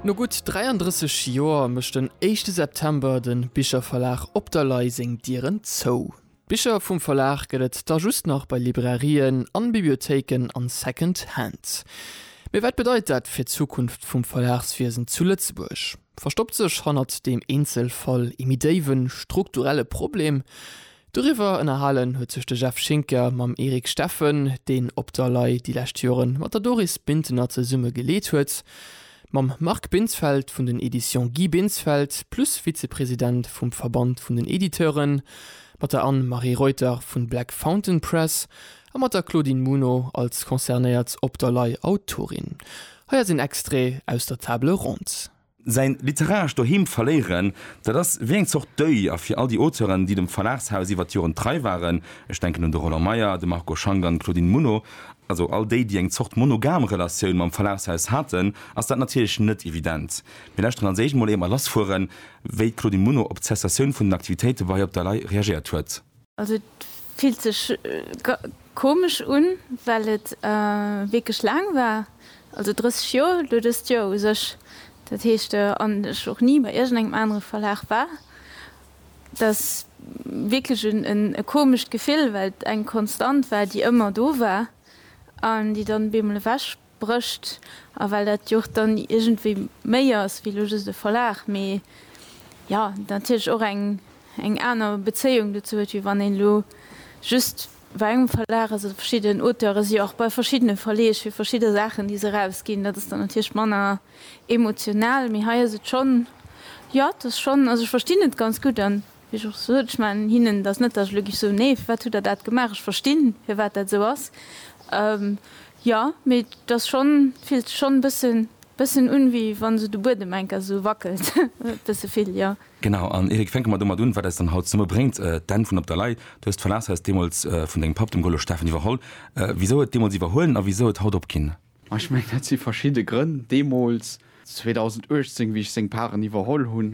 No gutt 33 Joer mécht den éischte September de Bicherverlag Op der Lay seng Dieren zou. D'Bicher vum Verlag gëtt et da just nach bei Librairien an Bibliothéiken a Second Hand. Mee wat bedeit dat fir d'Zukunft vum Verlagswiesen zu Lëtzebuerg? Verstoppt sech hannert deem Eenzelfall ee méi déiwe strukturelle Problem? Doriwwer ënnerhalen huet sech de Jeff Schinker mam Eric Steffen, deen Op der Lay déi lescht Jore mat der Doris Bintener zesumme geleet huet, mam Marc Binsfeld vun den Editions Guy Binsfeld plus Vizepresident vum Verband vun den Editeuren, mat der Anne-Marie Reuter vu Black Fountain Press a mat der Claudine Muno als concernéiert Op der Lay Autorin. Hei ass een Extrait aus der Table ronde. Säin literarescht Doheem verléieren, dat ass wéi eng Zort Deuil. A fir all déi Auteuren, déi dem Verlagshaus iwwer d'Joren trei waren, ech denken un de Roland Meyer, de Marco Schank an d'Claudine Muno, also all déi, déi eng Zort monogam Relatioun mam Verlagshaus haten, ass dat natierlech net evident. Mir lauschteren als éischt mol, éier mer lassfueren, wéi d'Claudine Muno op d'Cessatioun vun den Aktivitéite bei Op der Lay reagéiert huet. Also et fillt sech komesch un, well et wierklech laang war, also 30 Joer, elo dëst Joer u sech, dat heescht an ech och ni bei iergendengem anere Verlag war. Et ass wierklech e komescht Gefill, well et eng Konstant war, déi ëmmer do war an déi dann op eemol ewech Brëscht, a well dat jo och dann iergendwéi méi ass wéi elo just e Verlag, mee jo natierlech och eng eng aner Bezéiung dozou huet, wéi wann een elo just bei engem Verlag ass oder verschidden Auteure si jo och bei verschiddene Verleeg fir verschidde Saachen, déi se erausginn. Dat ass dann natierlech manner emotional, mee hei ass et schonn, jo et ass schonn, also ech verstinn et ganz gutt an Wéi ech och sot, ech man hinnen dat net, datt ech elo géif soen, nee, firwat hutt Der dat gemaach, ech verstinn, firwat dat esou ass. Jo, mee et ass schonn, et fillt sech schonn e bëssen, bëssen un, wéi wa sou de Buedem enker esou wackelt, e bësse vill, jo. Genau, an Eric, fänke mer domat un, wat eis dann haut zesummebréngt, d'Enn vun Op der Lay. Du hues d'Verlagshaus deemools vun dengem Papp, dem Golo Steffen, iwwerholl. Wisou huet deemools iwwerhuelen a wisou huet haut opginn? Ma ech mengen, dat si verschidde Grënn. Deemools, 2018, wéi ech seng Paren iwwerholl hunn,